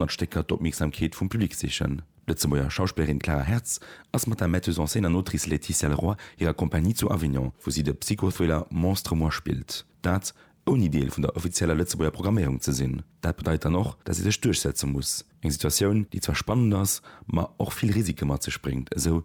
mat Stécker d'Opmierksamkeet vum Public sichen. D'Lëtzebuerger Schauspillerin Clara Hertz ass mat der Metteuse en scène an Autrice Laetitia Leroy hirer Compagnie zu Avignon, wou si de Psycho-Thriller Monstre moi spillt. Dat, ouni Deel vun der offizieller Lëtzebuerger Programméierung ze sinn. Dat bedeit dann och, dass si sech duerchsetze muss. Eng Situatioun, déi zwar spannend ass, ma och vill Risike mat sech bréngt, esou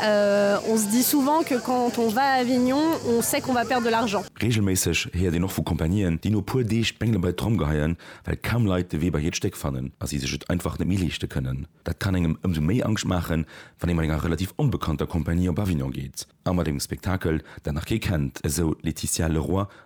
On se dit souvent que quand on va à Avignon, on sait qu'on va perdre de l'argent. Reegelméisseg héiert een och vu Compagnieen, déi no puer Deeg d'Bengele bei d'Tromm geheien, well kaum Leit de Wee bei hiert Stéck fannen a si sech et einfach net méi leeschte kënnen. Dat kann engem ëmsou méi Angscht maachen, wann ee mat enger relativ onbekannter Compagnie op Avignon geet a mat engem Spektakel, dat nach kee kennt, esou d'Laetitia Leroy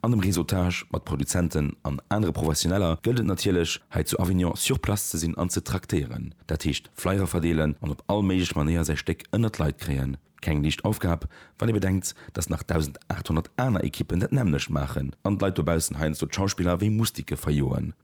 An dem Réseautage mat Produzenten an anere Professioneller gëllt et natierlech, hei zu Avignon sur place ze sinn an ze traktéieren. Dat heescht Flyer verdeelen an op all méiglech Manéier säi Stéck ënnert d'Leit kréien. Keng liicht Aufgab, wann ee bedenkt, datt nach 1.800 aner Ekippen dat nämmlecht maachen an d'Leit dobaussen heiansdo d'Schauspiller wéi Mustike verjoen.